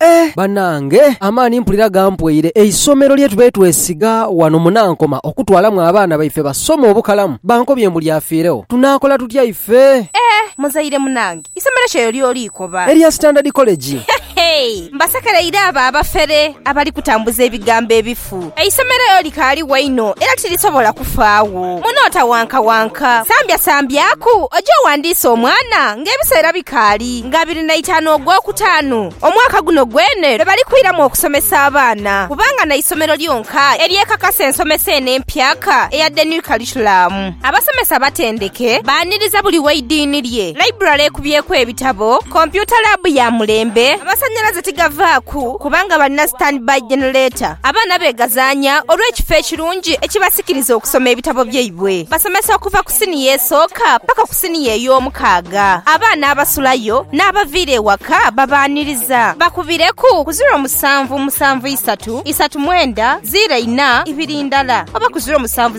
Eeh banange amaani mpulira gampweire eisomero lye tube twesiga wano munankoma okutwalamu abaana baife basome obukalamu bankobye mbu lyafiiregho tunakola tutya ife. Eeh muzaire munange isomero ki eryo lyoli koba. Erya standard college. Heheii mbasekereire abo abafere abali kutambuza ebigambo ebifu. Yosefu. Eisomero elyo likaaligho inho era tilisobola kufaagho. Munootawankawanka. Sambyasambyaku oje owandiise omwana ng'ebiseera bikaali nga abiri na itaanu ogw'okutaanu, omwaka guno gwene lwe bali kwiramu okusomesa abaana, kubanga n'eisomero lyonka eryekakasa ensomesa eno empyaka eya The New Curriculum. Abasomesa abatendeke baaniriza buli w'eidiini lye, laiburale ekubyeku ebitabo, kompyuta laabu ya mulembe, amasanhalaze tigavaaku kubanga balina stand-by generator, abaana beegazaanya olw'ekifo ekirungi ekibasikiriza okusoma ebitabo byaibwe. Basomesa okuva ku siniya esooka paka ku siniya ey'omukaaga. Abaana abasulayo n'abaviira ewaka babaaniriza. Bakubireku ku ziro musanvu musanvu isatu isatu mwenda ziiro ina ibiri ndala oba ku ziro musanvu